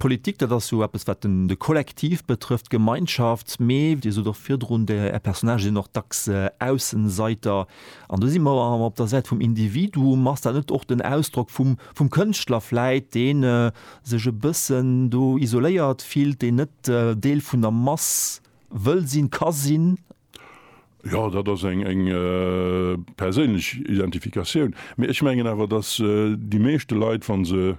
Politik, dat ass jo eppes, wat de Kollektiv betrëfft, d'Gemeinschaft. Mee Dir sot och virdrun, Är Personnagë sinn och dacks Aussenseiter. An do si mer awer op der Säit vum Individuum. Ass dat net och den Ausdrock vum vum Kënschtler vläit, deen sech e bëssen do isoléiert fillt, deen net Deel vun der Mass wëll sinn, ka sinn? Jo, dat ass eng perséinlech Identifikatioun. Mee ech mengen awer, datt déi meeschte Leit, wa se,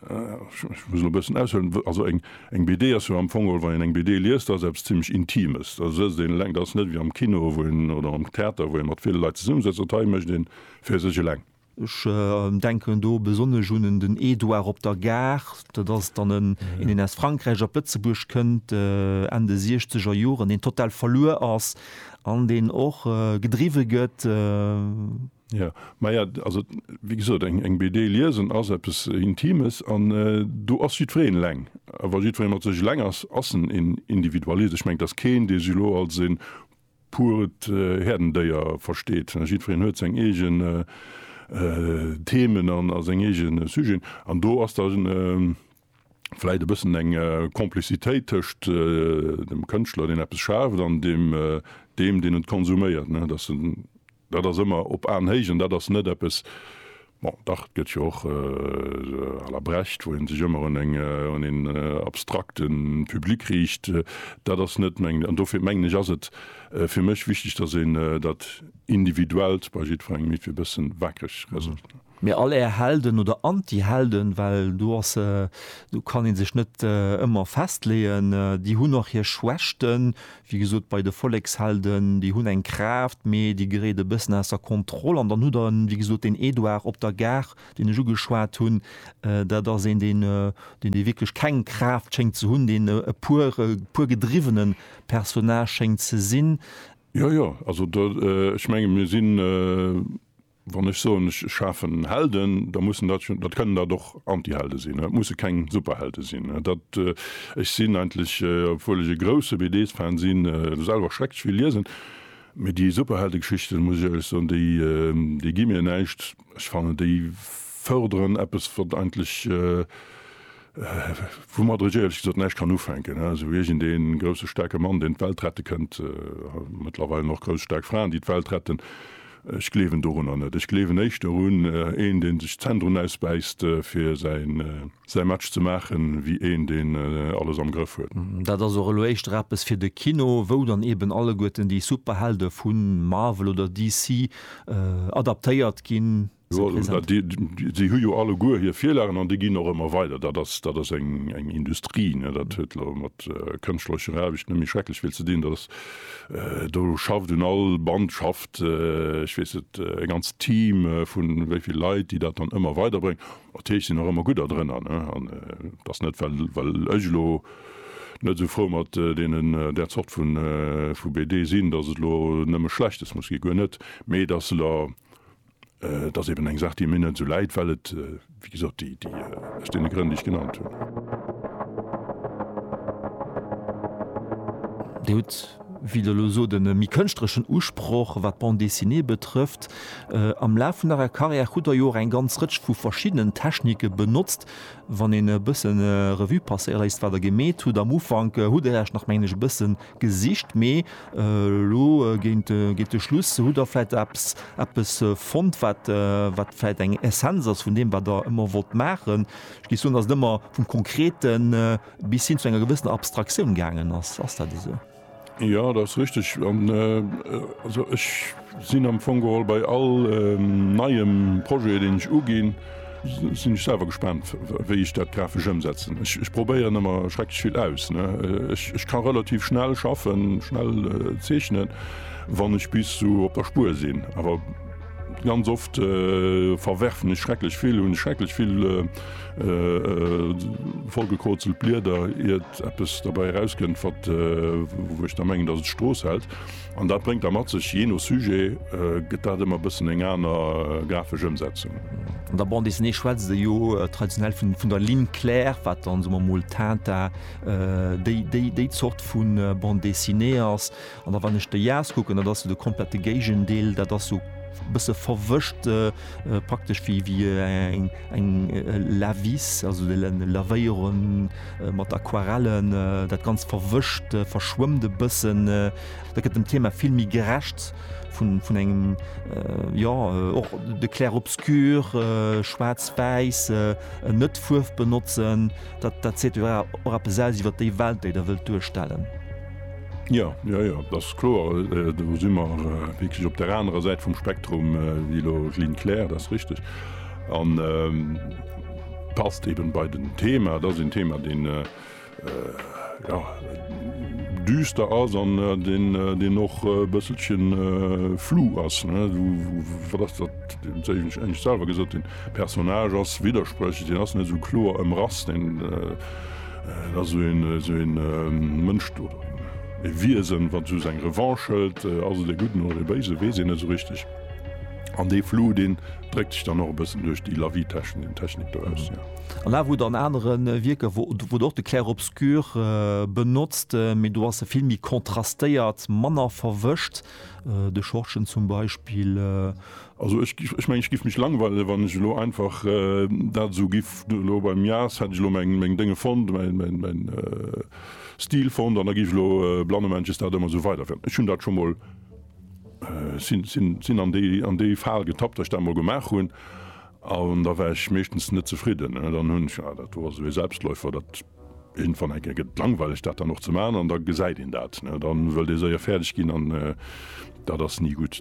ech muss elo e bëssen aushuelen, also eng BD ass jo am Fong, wa een eng BD liest, ass eppes zimlech Intimes. Da sëtzt een eleng. Dat ass net ewéi am Kino oder am Theater, wou ee mat ville Leit zesummesëtzt. Dat hei mécht ee fir sech eleng. Ech denken do besonnesch un en den Edouard op der Gare, dat ass dann en, deen aus Frankräich op Lëtzebuerg kënnt Enn de siechzeger Joren, deen total verluer ass an deen och gedriwwe gëtt. Jo, maja, also wéi gesot, eng BD liesen ass eppes Intimes an do ass jiddwereen eleng. A wa jiddweree mat sech eleng ass, ass en een Individualist. Ech mengen, et ass keen, dee sech elo als e puert Häerdendéier versteet. Jiddwereen huet seng eegen Themen a seng eegen Sujeten. An do ass da vläicht e bëssen eng Complicitéit tëscht dem Kënschtler, deen eppes schaaft, an deem, deen et konsuméiert. Dat ass ëmmer op Aenhéicht an dat ass net eppes, bon, dach, et gëtt jo och à la Brecht, wou ee sech ëmmer un eng, un een abstrakte Public riicht. Dat ass net meng, an dofir mengen ech, ass et fir mech wichteg, datt een dat Individuellt bei jiddwerengem e bëssen wackreg hëlt. Mee all är Helden oder Antihelden, well do ass, do kann ee sech net ëmmer festleeën, déi hunn och hir Schwächten. Wéi gesot, bei de Vollekshelden, déi hunn eng Kraaft, mee déi geréit e bëssen aus der Kontroll. An dann hutt Der, wéi gesot, deen Edouard op der Gare, deen ech ugeschwat hunn. Dat ass een, deen, deen dee wierklech keng Kraaft schéngt ze hunn, deen e puer, e puer gedriwwene Personnage schéngt ze sinn. Jo, jo, also do, ech menge mir sinn Wann ech soen, ech schafen Helden, da mussen dat jo, dat kënnen dat och Antihelde sinn, dat musse keng Superhelde sinn. Dat, ech sinn eigentlech, obwuel ech e grousse BD-Fan sinn, selwer schrecklech vill liesen, mee déi Superheldegeschichten, muss ech éierlech soen, déi, déi gi mir näischt. Ech fannen, déi förderen eppes, wat eigentlech, woumat ech éierlech gesot näischt kann ufänken, esou wéi iergend ee grousse staarke Mann, deen d'Welt rette kënnt, mëttlerweil och grouss staark Fraen, déi d'Welt retten. Ech gleewen dorunner net. Ech gleewen éischter un een, dee sech d'Zänn drun ausbäisst, fir säi Match ze maachen, wéi een, deen alles am Grëff huet. Dat ass och elo éischter eppes fir de Kino, wou dann eeben alleguerten déi Superhelde vu Marvel oder DC adaptéiert ginn. Déi hu jo alleguer hir Virlagen an déi ginn och ëmmer weider. Dat ass, dat ass eng, eng Industrie. Dat huet elo mat kënschtlerecher Aarbecht net méi schrecklech vill ze dinn. Dat ass, do schafft un all Band schafft, ech weess net, e ganzt Team vu wéi vill Leit, déi dat dann ëmmer weiderbréngen. Natierlech sinn och ëmmer gudder drënner. An et ass net, well, well ech elo net esou frou mat deenen, där Zort vu, vu BD sinn, datt et elo nëmme Schlechtes muss ginn, guer net. Mee et ass elo. Et ass eben eng Saach, déi mir net esou läit, well et, wéi gesot, aus deene Grënn, déi ech genannt hunn. Dir hutt, wéi Der elo sot, e méi kënschtlereschen Usproch, wat d'Bande dessinée betrëfft. Am Laf vun Ärer Karriär hutt Der jo och eng ganz Rëtsch vu verschiddenen Technike benotzt. Wann een e bësse Revue passéiere léisst, wat Der gemeet hutt, am Ufank hutt Der Iech nach, mengen ech, e bësse Gesicht, mee elo géint de Schluss hutt Der vläicht eppes fonnt, wat vläicht eng Essenz ass vun deem, wat Der ëmmer wollt maachen. Ech géif soen, dass et ëmmer vum Konkrete bis hin zu enger gewëssener Abstraktioun gaangen ass. Ass dat esou? Jo, dat ass richteg. Sinn am Fong geholl bei all neiem Projet, deen ech uginn, sinn ech selwer gespaant, wéi ech dat grafesch ëmsetzen. Ech probéieren ëmmer schrecklech vill aus. Ech ka relativ schnell schaffen, schnell zeechnen, wann ech bis sou op der Spuer sinn. Awer ganz oft verwerfen ech schrecklech vill, hunn schrecklech vill vollgekrozelt Blieder, iert eppes derbäi erauskënnt, wou ech da mengen, datt et d'Strooss hält. An dat bréngt da mat sech, jee no Sujet gëtt dat ëmmer e bëssen eng aner grafesch Ëmsetzung. An der Bande Dessinée schwätzt ee jo traditionell vun der Ligne claire, wat dann, soe mer emol, Tintin, déi déi Zort vu Bande Dessinée ass. An da wann ech de Jhas kucken, dat ass jo de komplette Géigendeel, dat ass jo e bësse verwëscht. praktesch wéi eng Lavis, also lavéieren mat Aquarellen, dat ganz verwëscht, verschwëmmt e bëssen, da gëtt dem Thema vill méi gerecht vun engem jo och de Clair-obscur, schwaarz-wäiss, net Fuerf benotzen, dat seet jo och eppes aus iwwer déi Welt, déi Der wëllt duerstellen. Jo, jo, jo, dat ass kloer. Do si mer wierklech op der anerer Säit vum Spektrum wéi elo d'Line Claire, dat ass richteg. An passt eben bei den Thema. Dat ass een Thema, deen düster ass an deen och e bësselchen flou ass. Wat ass dat, wéi ech engem selwer gesot hunn, Personnage ass widderspréchlech, deen ass net esou kloer ëmrass. Et ass esou ee Mënsch do, e Wiesen, wat esou seng Revanche hëlt. Ass et e Gudden oder e Béisen, weess een net esou richteg. An dee Flou, deen dréckt sech dann och e bëssen duerch déi Lavietechnik do aus, jo. An awer hutt Der an anere Wierker, wou Der och de Clair-obscur benotzt, mee do ass e vill méi kontrastéiert, manner verwëscht. De Schortgen zum Beispill Also ech mengen, ech giff mech langweilen, wann ech elo einfach dat esou giff elo beim Mias, hätt ech elo meng Dénge fonnt, mäin Stil fonnt an da giff ech elo blannemännches dat ëmmer esou weiderféieren. Ech hunn dat scho mol, sinn an déi an déi Fal getappt, datt ech dat mol gemaach hunn an da war ech meeschtens net zefridden. Dann hunn ech, dat wor esou ee Selbstläufer, dat iergendwann enke gëtt et langweileg dat dann och ze maachen an da gesäit een dat. Da wëllt ee séier fäerdeg ginn an dat ass ni gutt.